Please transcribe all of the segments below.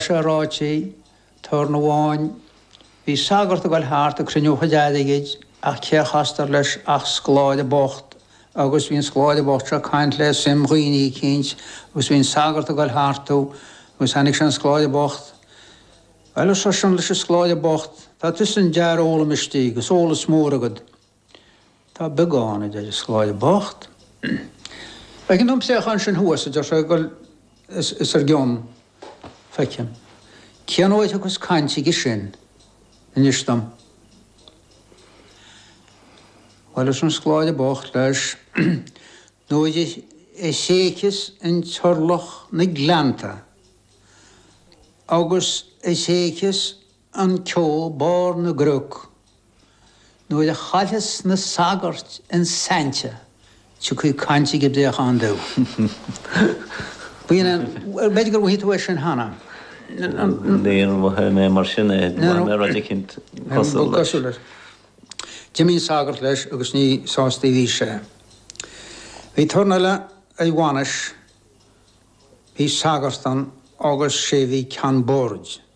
Sé ráite, turn amháin, bhí sagart ag goil thart ag cruinniú a chuid airgid ach cé a chastar leis ach scoláire bocht agus bhí an scoláire bocht seo ag caint le suim dhaoine eicínt agus bhí an sagart ag goil thartu agus thainic sé an scoláire bocht. Bhuel, ar seisean leis an scoláire bocht, tá tusa in d'fhear foghlaimistí, agus eolas mór agat. Tá beagán, a deir an scoláire bocht. Feiceann tú an préachán sin thuas, a deir sé, as ár gcionn, feicim. Cén uair a thiocfas caint aige sin, inis dom? Bhuel, arsa an scoláire bocht leis, nuair a thréigfeas an t-iorlach na gleannta, agus a thréigfeas an ceo barr na gcnoc. Nuair a chaillfeas na sagairt an saint tiocfaidh caint ag an bpréachán dubh. Bíonn an, b'fhéidir gur mhothaigh tú é sin cheana? Níor mhothaigh mé mar sin é, mhothaigh mé rud eicínt cosúil leis. D'imigh an sagart leis agus ní sásta a bhí sé. Bhí turn eile ag bainis, bhí sagart ann agus sé bhí ceann boird.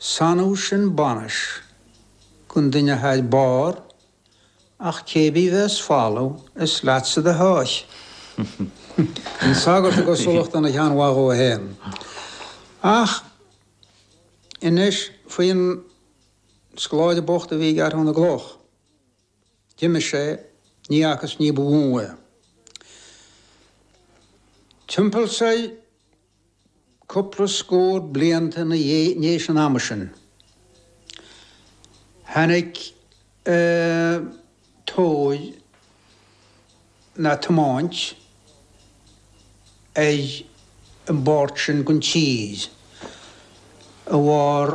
Is annamh sin bainis gan duine thar bárr ach cé bith a bheas falamh is leatsa do sháith. An sagart i gcosúlacht an shean-mhadadh fhéin. Ach anois faoin scoláire bocht a bhí ag athrú na gcloch. D'imigh sé ní fhaca is ní bhfuair é. Timpeall soir. Cúpla scór blianta i ndéis an ama sin, tháinig tóir nó tiomáint ar an bpáirt sin den tír a bharr,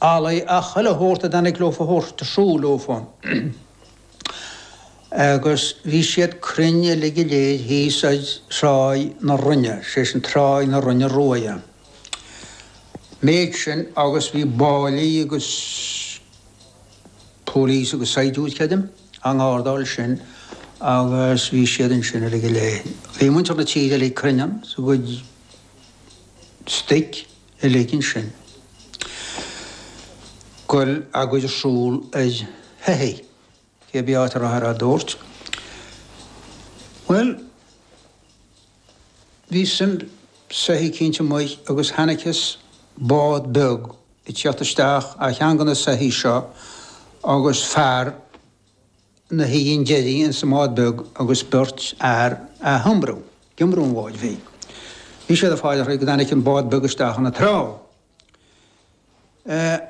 Eallach, chuile shórt a dtáinig leofa a thabhairt ar siúl leofa agus bhí siad cruinn uilig go léir thíos ag Tráigh na Rinne, sé sin Tráigh na Rinne Ruaidhe. Méid sin agus bhí báillí agus police agus saighdiúir, creidim, á ngárdáil sin agus bhí siad ansin uilig go léir. Bhí muintir na tíre uilig cruinn ann is a gcuid stoic. uilig ansin ag goil á gcur ar siúl ar shoithigh, cé bith áit a rabhthar á dtabhairt, bhuel, bhí suim soithigh eicínt amuigh agus thainiceas bád beag ag tíocht isteach ó cheann de na soithigh seo agus fear, 'na shuí in deiridh ins an mbád beag agus beirt fhear a' hiomramh, iomramh an bháid bhig. Bhí siad a' faire go dtainic an bád beag isteach 'na trá.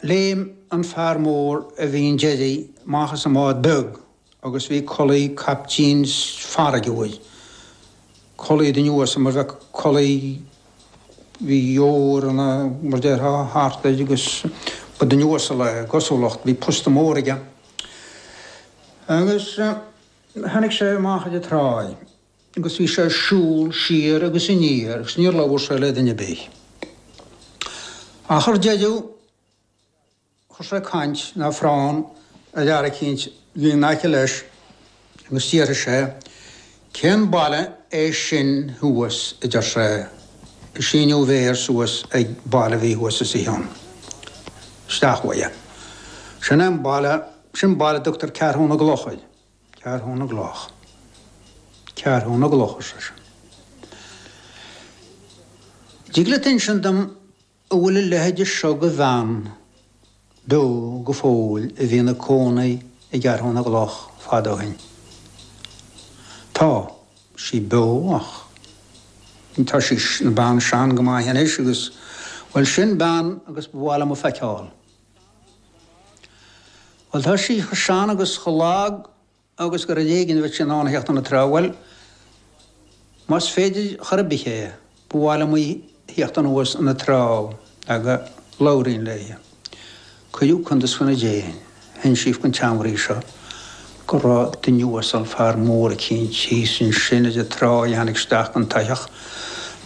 Léim an fear mór a bhí in deiridh 'mach as an mbád beag agus bhí culaith caiptín farraige air. Culaith duine uasal mar bheadh culaith, bhí ór ina, mar déarfá, thart air agus ba duine uasal é, i gcosúlacht, bhí posta mór aige. Agus tháinig sé amach ar an tráigh agus bhí sé ag siúl siar agus aniar agus níor labhair sé le duine ar bith. Ach ar deireadh chuir sé caint, nó forrán, ar fhear eicínt a bhí in aice leis. Agus d'fhiafraigh sé, Cén baile é sin thuas, a deir sé, ag síneadh a mhéar suas ag baile a bhí thuas os a chionn isteach uaidhe. Sin é an baile, sin baile a dtugtar Ceathrú na gCloch air. Ceathrú na gCloch. Ceathrú na gCloch, ar seisean. An dtig leat insint dom An bhfuil a leithide seo de bhean beo go fóill a bhí ina cónaí i gCeathrú na gCloch fad ó shin? Tá, sí beo ach. tá sí ina bean sean go maith anois agus, bhuel, sin bean agus ba mhaith liom a feiceáil. Bhuel, tá sí chomh sean agus chomh lag. agus gur ar éigin a bheadh sí in ann a theacht 'na trá, bhuel, más féidir chor ar bith é, ba mhaith liom í a theacht anuas 'na trá, go labhraínn léi. Cuireadh cuntas faoina déin, hinsíodh don tseanmhnaoi seo, go raibh duine uasal, fear mór eicínt, thíos ansin ar an trá a tháinig isteach den tsoitheach,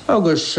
agus.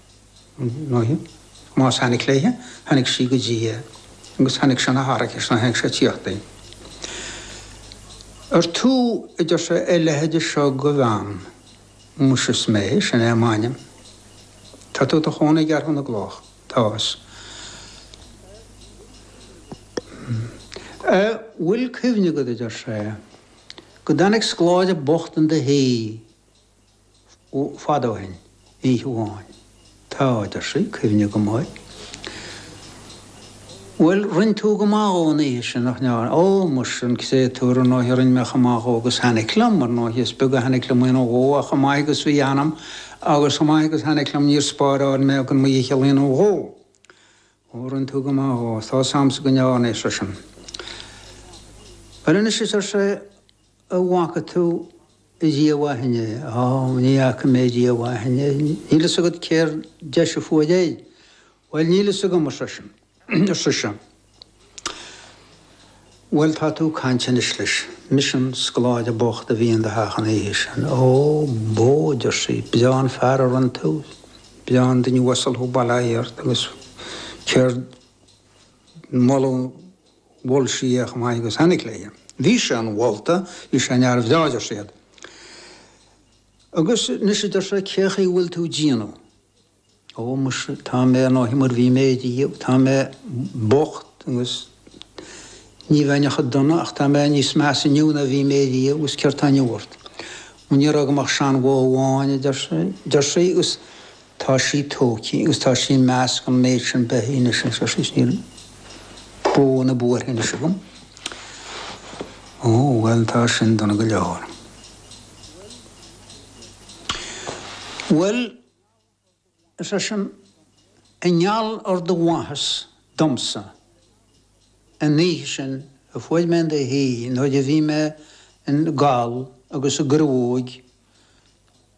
Más tháinig léithe, tháinig sí go dtí é, agus tháinig sé 'na haraicis nuair a chonaic sé a' tíocht í. Ar tú, a deir sé, a leithide seo go bhean? Muise is mé, sin é m'ainm. Tá tú i do chónaí i gCeathrú na gCloch? Tá. 'S an bhfuil cuimhne agat, a deir sé, go dtáinig scoláire bocht in do thigh? fada ó shin, oíche amháin, tá, a deir sí, cuimhne agam air. Bhuel, rinn tú go maith dhó an oíche sin, nach ndearna? Ó, muise, an créatúr, ar ndóighe, rinn mé chomh maith dhó agus thainic liom, ar ndóighe, is beag a thainic liom a dhéanamh dhó, ach chomh maith agus bhí ionam, agus chomh maith agus thainic liom, níor spáráil mé gan mo dhícheall a dhéanamh dhó. Ó, rinn tú go maith dhó, tá's a'msa go ndearna, ar seisean. Bhuel anois, ar sé, a bhfaca tú riamh ó shin é? Aw, ní fhaca mé riamh ó shin é. Níl fhios agat céard deis a fuair é? Bhuel, níl fhios agam, ar sise. Bhuel, tá tú ag caint anois leis, mise, an scoláire bocht a bhí in do theach an oíche sin. Ó, bó, a deir sí, breá an fear a rinne tú, breá an duine uasal thú, bail ó Dhia ort, agus céad moladh, Mhol sí é chomh maith agus tháinig léi. Bhí sé inmholta, bhí sé ina fhear bhreá adeir siad. Agus anois adeir sé cé chaoi a bhfuil tú 'déanamh? Ó muise tá mé ar ndóigh mar bhí mé ariamh, tá mé bocht agus ní bheinn ach go dona ach tá mé níos measa inniu ná bhí mé ariamh agus céard tá inniu ort? Ó ní raibh agam ach seanbhó amháin adeir sé, deir sí, agus. Tá sí tógtha agus tá sí i measc an méid sin beithí anois anseo síos. Níl bó ná buarach anois agam. Ó, bhuel, tá sin dona go leor. Bhuel, ar seisean, i ngeall ar do mhaitheas domsa an oíche sin a fuair mé in do thigh nuair a bhí mé i gcall agus i gcruóg,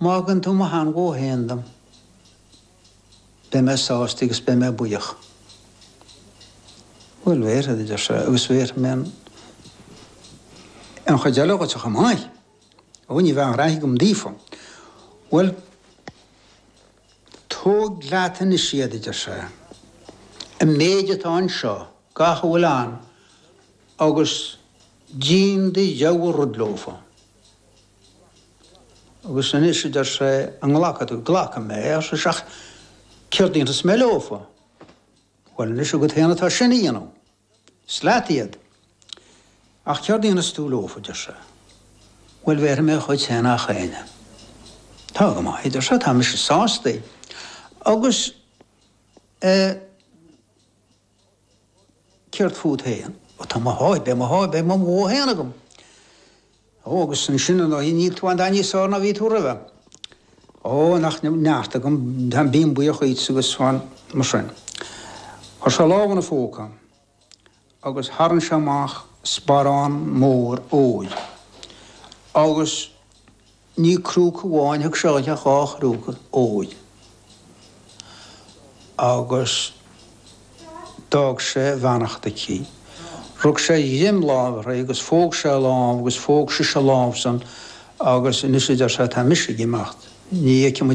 Má thugann tú mo sheanbhó féin dom, beidh mé sásta agus beidh mé buíoch. Bhuel, bhéarfaidh, a deir sé, agus bhéarfaidh mé an chuid eile dhuit chomh maith. Ó, ní bheadh aon ghraithe agam daofa. Bhuel, tóg leat anois iad, a deir sé, an méid atá anseo, gach a bhfuil ann, agus déan do rogha rud leofa. Agus anois, a deir sé, an nglacfaidh tú? Glacfaidh mé é, ar sise, ach céard a dhéanfas mé leofa? Bhuel, anois agat féin atá sin a dhéanamh. Is leat iad. Ach céard a dhéanfas tú leofa, a deir sé. Bhuel, bhéarfaidh mé a chuid féin do gach éinne. Tá go maith, a deir sé, tá mise sásta. Agus eh. Céard fút féin? Ó tá mo sháith, beidh mo sháith, beidh mo bhó féin agam. Ó agus ansin an oíche níl tú a dhath níos fearr ná bhí tú roimhe. Ó nach neart agam, tá, bím buíoch duit agus fan, mar sin. Chuir sé lámh ina phóca agus tharraing sé amach sparán mór óir agus. Ní crúca amháin a thug sé di ach dhá chrúca óir agus d'fhág sé a bheannacht aici. Rug sé greim láimhe uirthi agus phóg sé a lámh agus phóg sise a lámhsan agus anois a deir sé tá mise ag imeacht, ní fheicfidh